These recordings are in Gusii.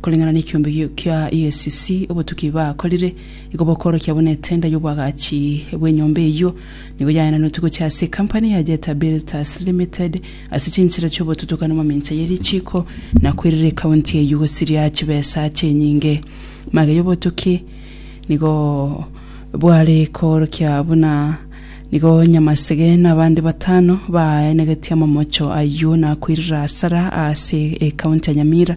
Koreng'ana nekiombe kia EACC, obotuki bakorire nigo bokorokia buna etenda y'obwagachi bw'enyomba eyio nigo yaenanotwe gochia ase ekampani ya Jeta Builders Limited ase chinchera chi'obotutukani mamincha ye richiiko na koirera ekaunti eyio gosiria chibesa chinyinge. Magega y'obotuki nigo bware koorokia buna nigo Nyamasege na abande batano baaenegetie amamocho ayio na koirera asara ase ekaunti ya Nyamira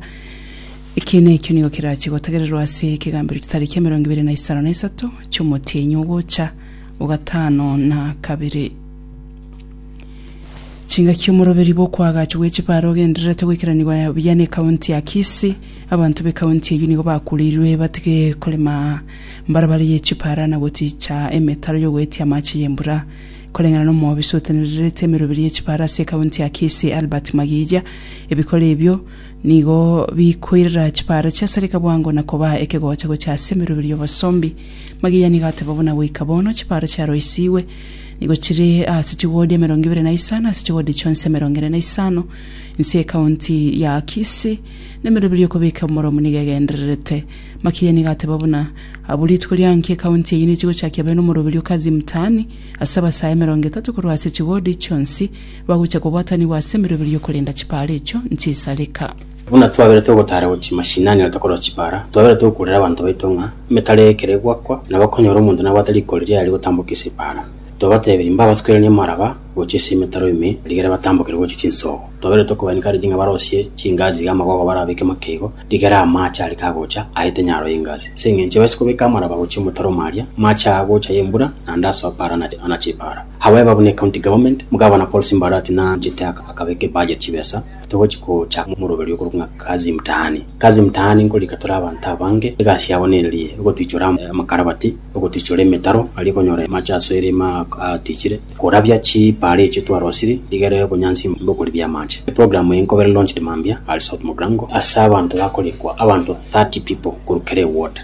Ekiina ekio nigo kerachie gotegererwa ase ekegambero chitariki emerongo ebere na isano na isato chi'omotienyi ogocha o gatano na kabere. Chingaki omoroberi bw'okoagachwa gwe chibare ogendererete goikeranigwa buya ne county ya Kisii, abanto be county eyio nigo bakureirwe batige korema mbarabara ye chipara na goticha emetaro y'ogoetia amache y'embura. Koreng'ana n'omwobisi otenererete emeroberi ye chipare ase county ya Kisii Albert Magiiya, ebikoro ebio Nigo bikoirera chipaaro chi'esereka bwango na kobaa ekegocha gochia ase emeroberio y'obosombi. Magiyani gateba buna goika bono chipaaro chiaroisigwe nigo chire ase chiwodi emerongo ebere na isano ase chiwodi chionsi emerongo ene na isano. Inse y'ekaunti ya Kisii nemeroberio y'okobeka omoromo nigo egendererete. Makiyani gateba buna abwo rituko ria nki ekaunti eyio nichigochakia bene omoroberio Kazi Mtaani ase abasae emerongo etato korwa ase chiwodi chionsi Bagocha kobwatanigwa ase emeroberio y'okorenda chipaara echio nch'isareka. Buna twabeire togotaara gochia mashinani na tokorora chipaara, twabeire togokuurera abanto baito ng'a emetaro eye ekero egoakwa, nabo konyora omonto nabwate riko riria riaye rigotambokia ase epaara. Twabatebirie mbabasukeranie amaraba gochia ase emetaro ime rigere batambokere gochia chinsoogo. Twabeire tokobainekareria ng'a barosie chingaasi iga amagogo barabeke make igo, rigere amaache are kagocha aete nyaro y'engaasi. Ase engencho ebaise kobeka amaraba gochia omotaro omo aria, amaache aa agocha ay'embura, naende asoa paara anache epaara. However, buna ecounty government, Gavana Paul Simba Arati nanchete akabeka ebudget chibesa togochia gocha omoroberi okorokwa ng'a Kazi Mtaani. Kazi Mtaani nkorika tore abanto abange egasi yabo nererie ogotwichora amakarabati, ogotwichora emetaro aria okonyora amache ase erima atichire, korabia chipaara echio twarosiri rigere obonyansi bokoribia amache. Eprogram eye nkobere launched mambia are South Mogrango ase abanto bakorikwa abanto 30 people korwa kera eward.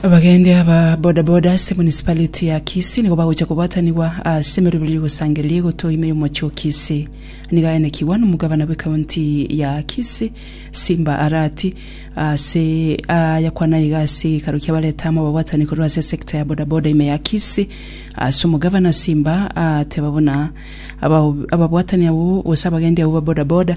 Abagendi aba bodaboda ase municipality ya Kisii nigo bagocha kobwatanigwa ase emeroberi y'ogosangereria egotoo ime y'omochie o Kisii. Nigo aenekigwa nomogabana bw'ecounty ya Kisii Simba Arati ase ayakwana iga ase egekaro ki'abareta amo ababwatani korwa ase esecta ya bodaboda ime ya Kisii. Ase omogabana Simba ateba buna ababwatani abwo gose abagendi abwo ba bodaboda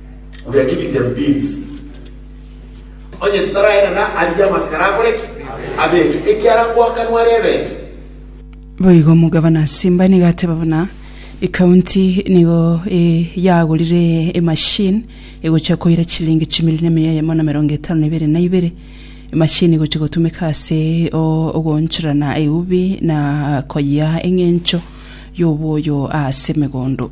We are giving them beans. Onye tutaraenana aria amasikara akore ki? Abeke. Ekiara gwakanwa rebesa. Boigo omogabana Simba nigo ateba buna ekaunti nigo e, yagorire emashini egocha koira chilingi chimilioni emeya yamo na merongo etano na ibere na ibere emashini egocha gotumeka ase o- ogoonchorana eubi na koyia eng'encho y'oboyo ase emegondo